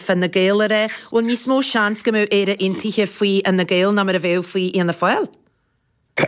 Fine Gael a Phat, bhfuil níos mó seans go mbeadh Éire Aontaithe faoi Fhine Gael ná mar a bheadh faoi Fhianna Fáil?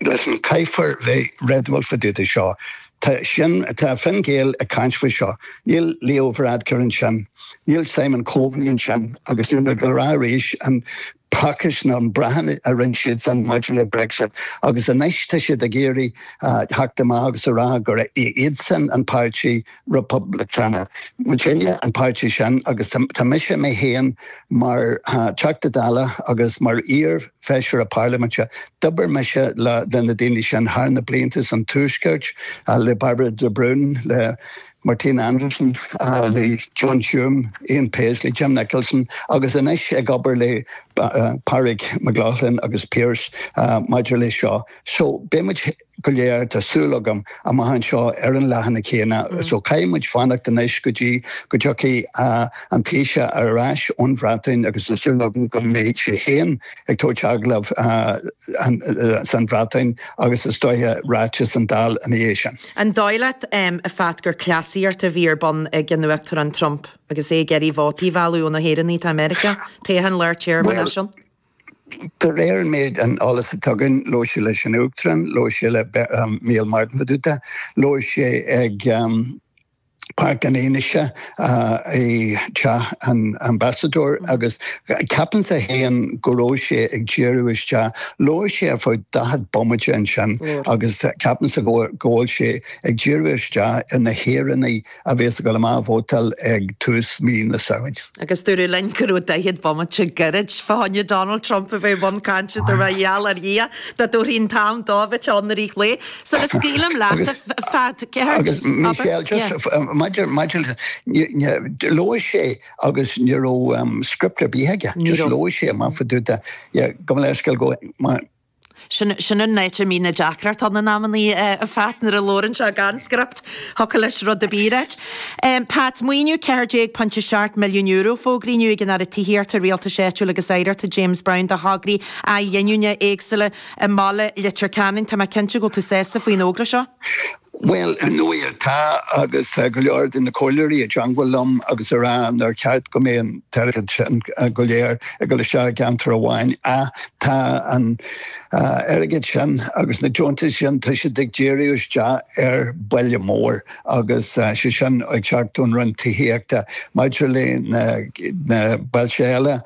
Listen, caithfear bheith réadúil fá dtaobh de seo. Tá Sinn, tá Fine Gael ag caint faoi seo. Níl Leo Varadkar ansin. Níl Simon Coveney ansin. Agus níl mé ag rá arís an Pacáiste nó na Breatain a rinne siad san maidir le Brexit agus anois tá siad ag iarraidh theacht amach agus a rá gur iadsan an páirtí Poblachtánach. Muidinne an páirtí sin agus tá mise mé féin mar Teachta Dála agus mar iar-Feisire Parlaiminte, d'obair mise le na daoine sin thar na blianta san Tuaisceart, le Bairbre de Brún, le Martina Anderson, le John Hume, Ian Paisley, Jim Nicholson agus anois ag obair le Pádraig McLaughlin agus Pearse maidir leis seo. So beidh muid go léir, tá súil agam, amach anseo ar an leathanach céanna. So caithfidh muid fanacht anois go dtí go dtiocfaidh an Taoiseach ar ais ón Bhreatain agus tá súil agam go mbeidh sé féin ag tabhairt agallamh san Bhreatain agus is dóiche ráiteas sa Dáil ina dhiaidh sin. An dóigh leat, a Phat, gur cleasaíocht a bhí ar bun ag an Uachtarán Trump agus é ag iarraidh vótaí a mhealladh ó na hÉireannaigh atá i Meiriceá, toghcháin lár téarma ansin? Bhuel, de réir an méid eolais atá againn, labhair sé leis an Uachtarán, labhair sé le Micheál Martin fá dtaobh de, labhair sé ag. Páirc an Fhionnuisce i dTeach an Ambasadóra agus ceapann sé féin go raibh sé ag díriú isteach, labhair sé ar feadh daichead bomaite ansin agus ceapann sé go bhfuil sé ag díriú isteach ar na hÉireannaigh a bhéas ag dul amach ag vótáil ag tús mí na Samhna. Agus dúradh linn go raibh 40 bomaite gairid fá choinne Donald Trump a bheith i mbun cainte, tar éis an tsaoil a Dhia, dá dtabharfaí an t-am dó a bheith ann i rith lae. So scaoilim leat, a Phat, Agus Michelle, just maidir, maidir le, labhair sé agus ní raibh script ar bith aige, just labhair sé, amach fá dtaobh de, yeah, gabh mo leithscéal, go, Sin sin an áit a mbíonn na deacrachtaí ann in amannaí a Phat nuair a labhrann sé gan script. Thiocfadh leis rud ar bith a ráit. Pat, Maoiniú €14.7 milliún fógraíodh inniu ag an Aire Tithíochta, Rialtais Áitiúil agus Oidhreachta James Browne do thograí athghiniúna éagsúla i mBaile Leitir Ceanainn. Tá mé cinnte go bhfuil tú sásta faoin fhógra seo. Bhuel, ar ndóigh tá, agus tá go leor de na comhairleoirí i dteangmhail liom agus a rá nár cheart go mbeidh an t-airgead sin go léir ag dul isteach i gceantar amháin, ach tá an airgead sin agus na deontais sin, tá siad ag díriú isteach ar bhaile mór agus sé sin ag teacht ón Roinn Tithíochta. Maidir le na bailte eile,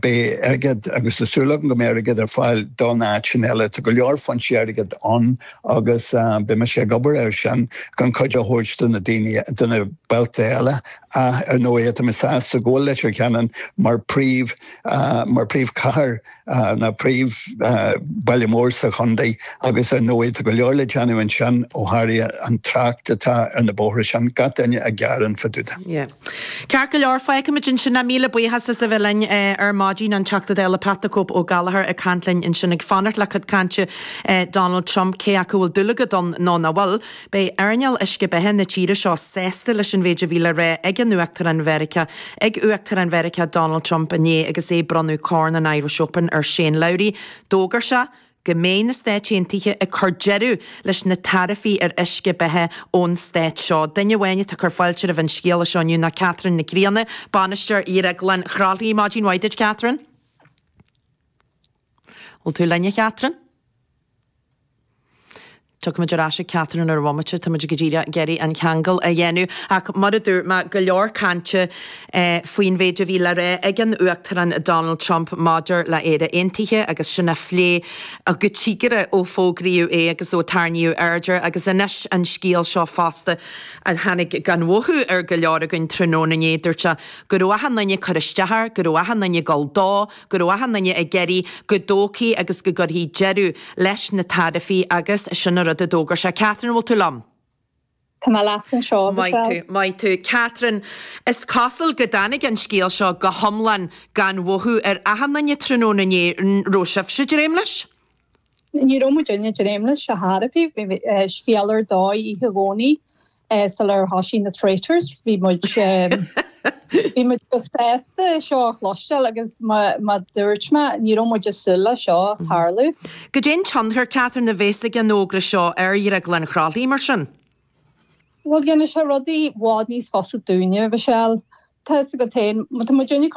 beidh airgead, agus tá súil agam go mbeidh airgead ar fáil do na háiteanna eile. Tá go leor foinsí airgid ann agus beidh mise ag obair air sin chun cuidiú a thabhairt do na daoine, do na bailte eile ach ar ndóighe tá mé sásta go bhfuil Leitir Ceanainn mar príomh, mar príomh chathair nó príomh baile mór sa chontae agus ar ndóighe tá go leor le déanamh ansin ó tharla an trácht atá ar na bóithre sin, gach duine ag gearán fadúda. Yeah. Ceart go leor, feicfimid ansin é. Míle buíochas as a bheith linn ar maidin, an Teachta Dála Pat the Cope Ó Gallchóir ag caint linn ansin, ag fanacht le cuid cainte Donald Trump, cé acu a bhfuil dúil agat ann nó nach bhfuil. Beidh earnáil uisce beatha na tíre seo sásta leis an mhéid a bhí le rá ag an Uachtarán Mheiriceá, ag Uachtarán Mheiriceá Donald Trump inné agus é ag bronnadh Corn an Irish Open ar Shane Lowry. D'fhógair sé go mbeidh na Stáit Aontaithe ag cur deireadh leis na taraifí ar uisce beatha ón Stát seo. Duine amháin atá ag cur fáilte roimh an scéala seo inniu ná Catherine Nic Grianna, Bainisteoir Dhrioglann Chroithlí. Maidin mhaith duit, Catherine. An bhfuil tú linn, a Chatherine? Tiocfaimid ar ais ag Catherine ar an bhomaite, táimid go díreach ag iarraidh an ceangal a dhéanamh, ach mar a dúirt mé, go leor cainte faoin mhéid a bhí le rá ag an Uachtarán Donald Trump maidir le Éire Aontaithe agus sin á phlé go tiubh géar ó fógraíodh é agus ó tarraingíodh aird air agus anois an scéal seo fosta a tháinig gan mhothú ar go leor againn tráthnóna inné. Dúirt sé go raibh achan duine ag cur isteach air, go raibh achan duine ag dul dó, go raibh achan duine ag iarraidh go dtógfaí agus go gcuirfí deireadh leis na taraifí agus sin an rud a d'fhógair sé. Catherine, an bhfuil tú liom? Tá mé leat anseo, Maith tú, Michelle. maith tú. Catherine, Is cosúil go dtáinig an scéal seo go hiomlán gan mhothú ar achan duine tráthnóna inné, an raibh sibhse ag dréim leis? Ní raibh muidinne ag dréim leis ar chor ar bith. Bhí scéal ar dóigh oíche Dhomhnaigh Sular thoisigh na Traitors bhí muid bhí muid chomh sásta é seo a chloisteáil agus mar a dúirt mé ní raibh muid ag súil le seo tarlú. Caidé an tionchar Catherine a bhéas ag an fhógra seo ar Dhrioglann Chroithlí mar sin? Bhuel dhéanann sé rudaí i bhfad níos fusa dúinne, Mhichelle. Tá fhios agat féin, tá muidinne ag cur